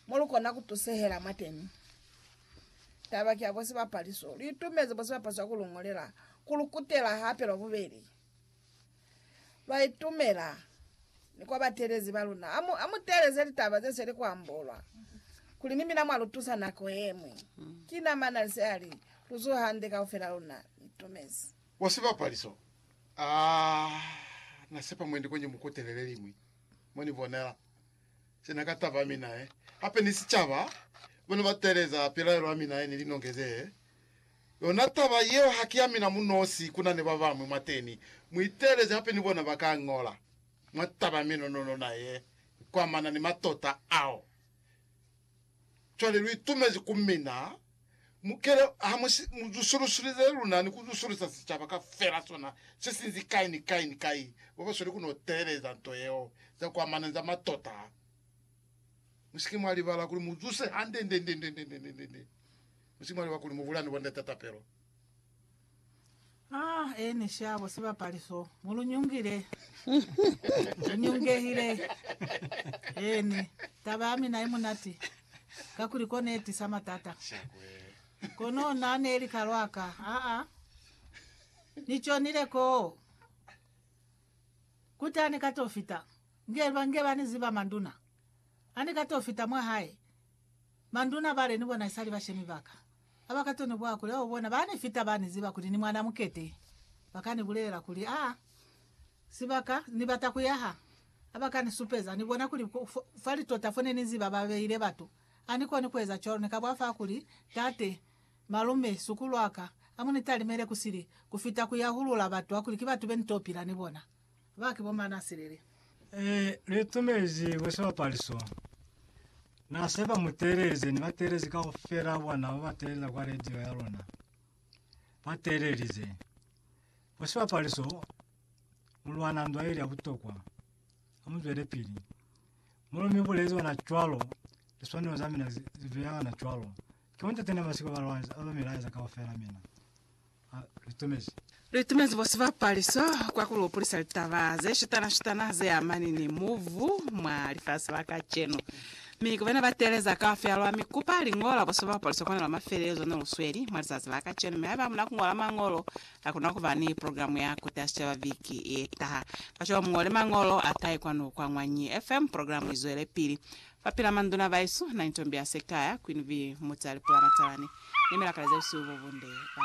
mo lu kona ku tusehela mwa teni. Taba ki ya kuli sibapali so lu itumezi bo sibapali swa ku lu ngolela ku lu kutela hape lwa bubeli. Lwa itumela ni kwa batelezi ba luna. Ha mu, ha mu teeleze litaba ze seli ku ambolwa kuli ni mina mwa lu tusa nako ye ñwi. Ki na Manalise a li, Lu zuha hande kaufel'a luna. Ni itumezi. Bo sibapali so, aa, na sepa mwendi ko ni mu kutele le liñwi mo ni bonela. Sina ka taba, mi nae hape ni sicaba bane ba teeleza pilaelo ya mina ye ni linongeze yona taba yeo. Ha ki ya mina munosi, ku na ni ba bañwi mwateni. Mu iteeleze hape ni bona ba ka ñola mwa taba ya minono lona ye kwamana ni matota ao. Cwale lu itumezi ku mina, mukele ha mu si mu zusulusulize luna ni ku zusulisa sicaba kaufela sona se sinzi kai ni kai ni kai, bo ba sweli ku no teeleza nto yeo za kwa mana za matota. Mu si ke mwa libala kuli mu zuse hande nde nde nde nde nde nde nde nde. Mu si ke mwa libala kuli mu bulani bo ndata tapelo. Ah, eni shabo sibapali so. Mulunyungile. Unyungehile. Eni. Taba ya mina imunati. Kakuli kone etisa matata. Kono nane eli kalwaka. Ah, ah. Nichonile ko. Kuti ani kato fita. Nge, nge bani ziba manduna. Ani kato fita mwa hae. Manduna bale ni bona isali bashemi baka. Ha ba ka to ni bwa kuli, Oh, bona, ba ni fita, ba ni ziba kuli ni mwana mukete. Ba ka ni bulela kuli, Ah, sibaka Ni bata ku yaha. Ha ba ka ni supeza, ni bona kuli fa litota fo ne ni ziba ba beile batu. Ha ni koni ku eza cwalo, ni ka bwa fa kuli, Tate, malume, sukulu wa ka, ha mu ni talimele ku sili, ku fita ku yahulula batu ba kuli ki batu be ni to pila ni bona. Ba ki bo mañi na sileli? E litumezi bo sibapali so. Na se ba mu teelelize ni bateelezi kaufela bona ba ba teelela kwa radio ya luna. Ba teelelize. Bo sibapali so, mu lwana ndwa ili ya butokwa. Ha mu zwele pili. Mulo mi bulezi ona cwalo, liswanelo za mina zi, zi beya ona cwalo. Ki bo ntate na masiko ba lwanisa, ba ba mi laeza kaufela mina. litumezi. Litumezi bo sibapaliso kwa kulupulisa litaba ze shitana-shitana ze amani ni mubu mwa lifasi la kacenu. Mi ku bena ba teeleza kaufela lwa mi kupa liñola bo sibapaliso kona lwa mafelelezo ne lu sweli mwa lizazi la kacenu, mi haiba hamuna kuñola mañolo, hakuna kuba ni programu ya Kuta Sicaba viki yetaha. Kacwalo muñole mañolo a kai kwanu kwa Ñwanyi FM, programu izwelepili. Fa pila Manduna Baisu, Naintombi Asekaya, Queen Vee, Muti Alipula Matalani, ne Milakale Zeusiwi Bobunde.